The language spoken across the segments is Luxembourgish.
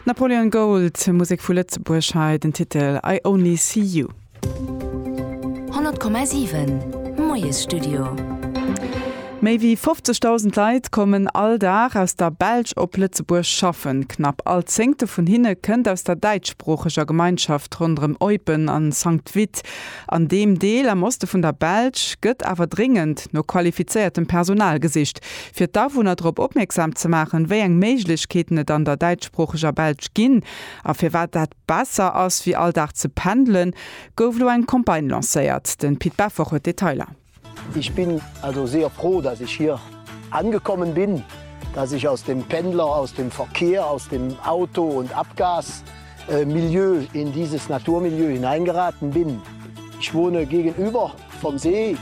Napoleon Gold, Musek vu Lëtzebuerg, hei den Titel I Only See You. 100,7 Moiesstudio. Méi wéi 50.000 Leit kommen all Dag aus der Belsch op Lëtzebuerg schaffen. Knapp all Zéngte vun hinne kënnt aus der däitschsproocheger Gemeinschaft ronderëm Eupen a Sankt-Vith. An deem Deel am Oste vun der Belsch gëtt awer dréngend no qualifizéiertem Personal gesicht. fir d'Awunner drop opmierksam ze maachen, wéi eng Méiglechkeeten et an der däitschsproocheger Belsch ginn a firwat dat besser ass wéi all Dag ze pendelen, gouf lo eng Campagne lancéiert. Den Pit Beffort huet d'Detailer. Ich bin also sehr froh, dass ich hier angekommen bin, dass ich aus dem Pendler-, aus dem Verkehr-, aus dem Auto und Abgas Milieu in dieses Naturmilieu hineingeraten bin. Ich wohne gegenüber. Vom See.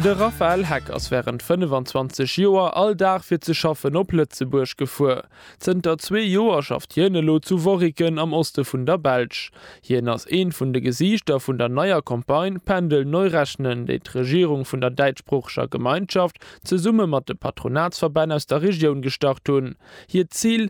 De Raphaël Heck ass wärend 25 Joer all Dag fir ze schaffen op Lëtzebuerg gefuer. Zënter zwee Joer schafft hien elo zu Worriken am Oste vun der Belsch. Hien ass eent vun de Gesiichter vun der neier Campagne Pendel neu rechnen, déi d'Regierung vun der däitschsproocheger Gemeinschaft zesumme mat de Patronatsverbänn aus der Regioun gestart hunn. Hiert Zil,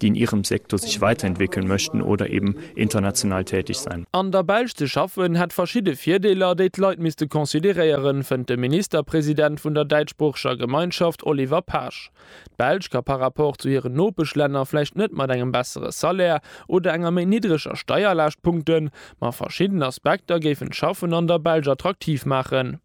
déi in ihrem Sektor sich weiterentwickeln möchten oder eben international tätig sein. An der Belsch ze schaffen hätt verschidde Virdeeler, déi d'Leit misste consideréieren, fënnt de Ministerpresident vun der däitschsproocheger Gemeinschaft Oliver Paasch. D'Belsch ka par rapport zu hiren Nopeschlänner vläicht net mat engem bessere Salaire oder enger méi niddreger Steierlaascht punkten, ma verschidden Aspekter géifen d'Schaffen an der Belsch attraktiv maachen.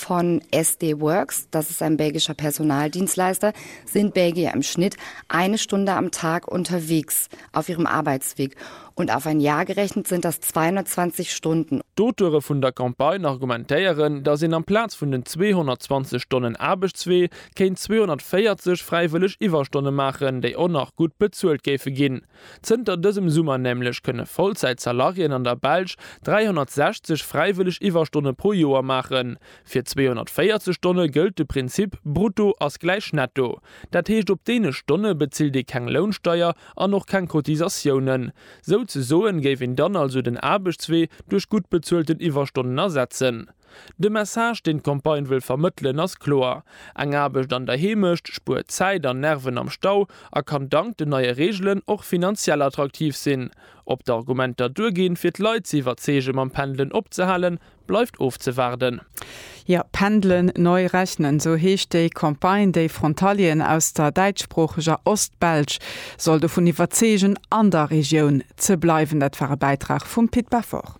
Von SD Worx, das ist ein belgischer Personaldienstleister, sind Belgier im Schnitt eine Stunde am Tag unterwegs auf ihrem Arbeitsweg und auf ein Jahr gerechnet sind das 220 Stunden. D'Auteure vun der Campagne argumentéieren, datt een amplaz vun den 220 Stonnen Aarbechtswee kéint 240 fräiwëlleg Iwwerstonne maachen, déi och nach gutt bezuelt géife ginn. Zënter dësem Summer nämlech kënne Vollzäit-Salarieën an der Belsch 360 fräiwëlleg Iwwerstonne pro Joer maachen. Fir 240 Stonne gëllt de Prinzip Brutto ass gläich Netto. Dat heescht op deene Stonne bezilt ee keng Lounsteier an och keng Cotisatiounen. Souzesoen géif een dann also den Aarbechtswee duerch gutt bezuelten Iwwerstonnen ersetzen. De Message, deen d'Campagne wëll vermëttelen, ass kloer, Eng Aarbecht an der Heemecht spuert Zäit an Nerven am Stau a kann dank den neie Reegelen och finanziell attraktiv sinn. Ob d'Argumenter duerginn, fir d'Leit ze iwwerzeege mam Pendelen opzehalen, bleift ofzewaarden. Jo, Pendelen neu rechnen, esou heescht déi Campagne, déi Frontalieren aus der däitschsproocheger Ost-Belsch soll dovun iwwerzeegen, an der Regioun ze bleiwen. Dat war e Bäitrag vum Pit Beffort.